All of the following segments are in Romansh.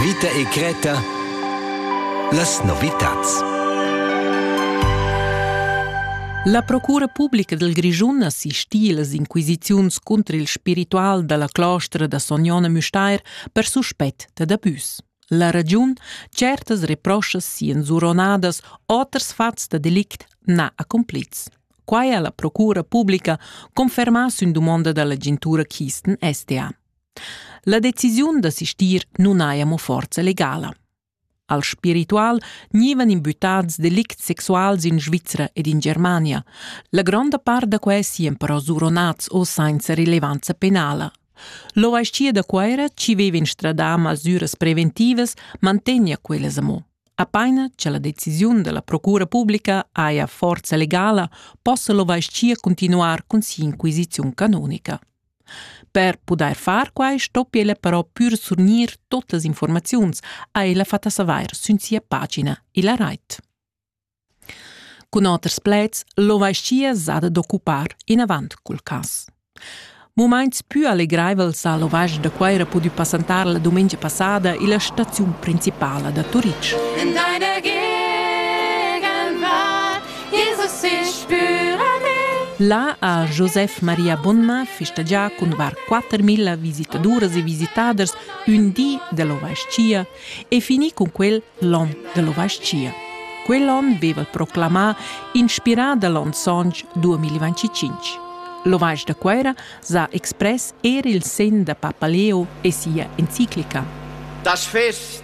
Vita e Greta Las novitads La procura publica del Grischun assistì las inquisiziuns contro il spiritual dalla clostra da Sognona Müstair per suspett dad abus. La ragiun, certas reproschas sian zuronadas, oters fats da delict na accomplits. Quai ha la procura publica confermà sün dumonda dall'agentura Kisten SDA. La decisiun da sistir nun haja mo forza legala. Al spiritual gnivan imbuttads delicts sexuals in Svizra ed in Germania. La gronda part da quai sian però suronats o sainza rilevanza penala. L'OHC da Cuera, ci veva instradà masüras preventivas, mantegna quellas amo. Apaina cha la decisiun della procura pubblica haja forza legala, possa l'OHC continuar cun si'inquisiziun canonica. Per pudair far quai stoppi ella però pür surgnir tuttas informaziuns, ha ella fat a savair sün sia pagina illa rait. Cun oters pleds, l'ovascia s'ha d'occupar inavant cul cas. Mumaints pü allegraivels ha l'ovasc da Cuaira pudü passantar la dumengia passada illa staziun principala da Turitg. In deine Là ha Josef Maria Bonnma festagià cun var 4.000 visitaduras e visitaders ün di dell'ovais-chia e finì cun quel l'on dell'ovais-chia. Quell'on veva proclamà, inspirà da l'on sontg 2025. L'ovais da Cuera s'ha express er il sen da Papaleo e sia enciclica. Das Fest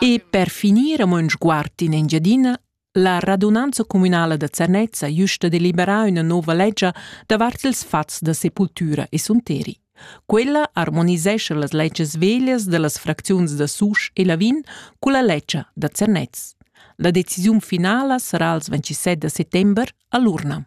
E per finir amo ün sguard in Engiadina, la radunanza communala da Zernez ha güsta deliberà üna nouva legia davart ils fats da sepultura e sunteri. Quella armonisescha las legias veglias da las fracziuns da Susch e Lavin culla legia da Zernez. La decisiun finala sarà als 27 da settember a l'urna.